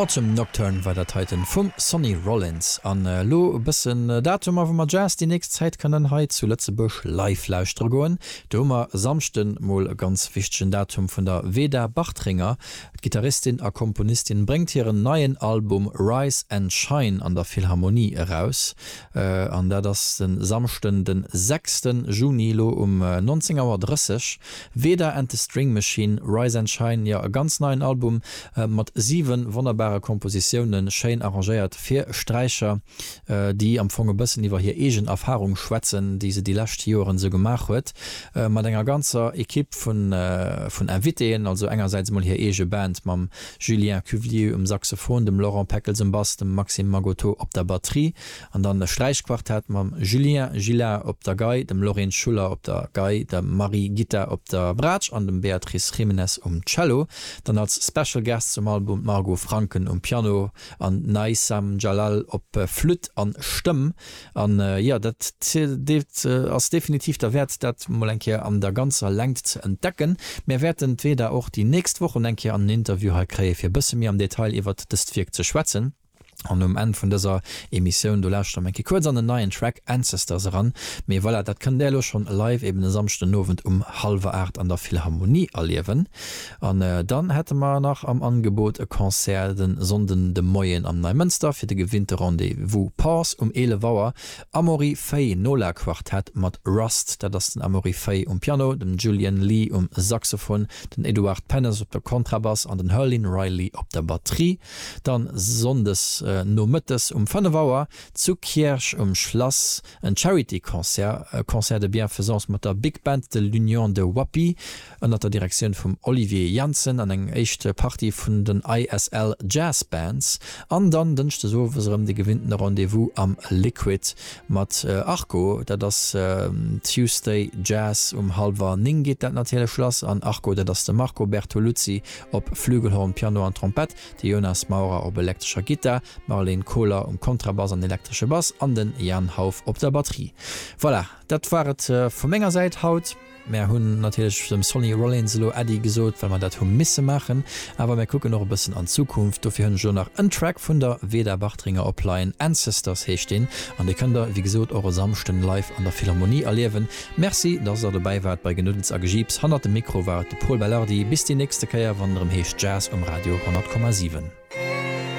Autumn Nocturne war dat heiten vum Sonny Rollins. An elo e bëssen Datumer wou mer Jazz déi nächst Zäit kënnen hei zu Lëtzebuerg live lauschtere goen. Do hu mer e Samschden mol e ganz wichtegen Datum vun der Veda Bartringer. D'Gittaristin a Komponistin bréngt hiren neien Album Rise and Shine an der Philharmonie eraus. An dat ass de Samschden den 6 Juni elo um 19 Auer 30. Veda and the String Machine, Rise and Shine, jo e ganz neien Album mat 7 wonnerbare Kompositiounen, schéin arrangéiert fir Sträicher, déi am Fong e bëssen iwwer hir eegen Erfarung schwätzen, déi se déi lescht Joeren esou gemaach huet, mat enger ganzer Ekipp vun Invitéen, also engersäits emol hir eege Band mam Julien Cuvelier um Saxophon, dem Laurent Peckels um Bass, dem Maxime Magoteau op der Batterie An dann e Sträichquartett mam Julien Gillard op der Gei, dem Lorin Schuller op der Gei, der Marie Gitta op der Braatsch an dem Beatrice Jiménez um Cello. Dann als Special Guest zum Album d'Margot Franken um Piano an d'Naïsam Jalal op Flütt an Stëmm. An jo, dat deet ass definitiv derwäert dat mol eng Kéier an der ganzer Längt ze entdecken. Mär wäerten d'Veda och déi nächst Wochen eng Kéier an en Interview hei kréien fir e bësse méi am Detail iwwert dëst Wierk ze schwätzen. An um Enn vun dëser Emissioun, do lauschtert mer eng Kéier kuerz an den neien Track Ancestors eran. Mee voilà, dat kënnt Där elo schonn live eben e Samschdenowend um hallwer 8 an der Philharmonie erliewen. An dann hätte mer nach am Angebot e Concert de Sonnden de Moien am Neimënster fir de gewinnte Rendez-vous Pause um 11 Auer, Amaury Fay Nola Quartett mat Rust, dat ass den Amaury Fay um Piano, den Julian Lee um Saxophon, den Edouard Pennes op der Kontrabass an den Herlin Riley op der Batterie. Dann Sonndes Nomëttes um 5 Auer zu Kierch um Schlass en Charity Concert, e Concert de Bienfaisance mat der Big Band de l'Union de Wappy ënnert der Direktioun vum Olivier Janssen an eng éischt Partie vun den ISL Jazz Bands an dann Dënschdes Owes erëm de gewinnten Rendez-vous am Liquid mat Arco, dat ass Tuesday Jazz um halwer 9 geet dat natierlech lass an Arco dat ass de Marco Bertoluzzi op Flügelhorn, Piano an Trompett, de Jonas Maurer op elektrescher Gittar, d'Marleen Kohler um Kontrabass an elektresche Bass an den Jan Hauff op der Batterie. Voilà, dat war et vu menger Säit haut. Mär hunn natierlech dem Sonny Rollins elo Äddi gesot, well mer dat hu misse maachen. Awer mär kucken och e bëssen an d'Zukunft. Dofir hunn ech elo nach en Track vun der Veda Bartringer op Laien, Ancestors heescht deen, an dee kënnt der, wéi gesot, och e Samschden live an der Philharmonie erliewen. Merci dass der dobäi waart bei Genuddels a Gejiips. Hannert dem Mikro war et de Pol Belardi. Bis déi nächste Kéier wann et erëm heescht Jazz um Radio 100,7.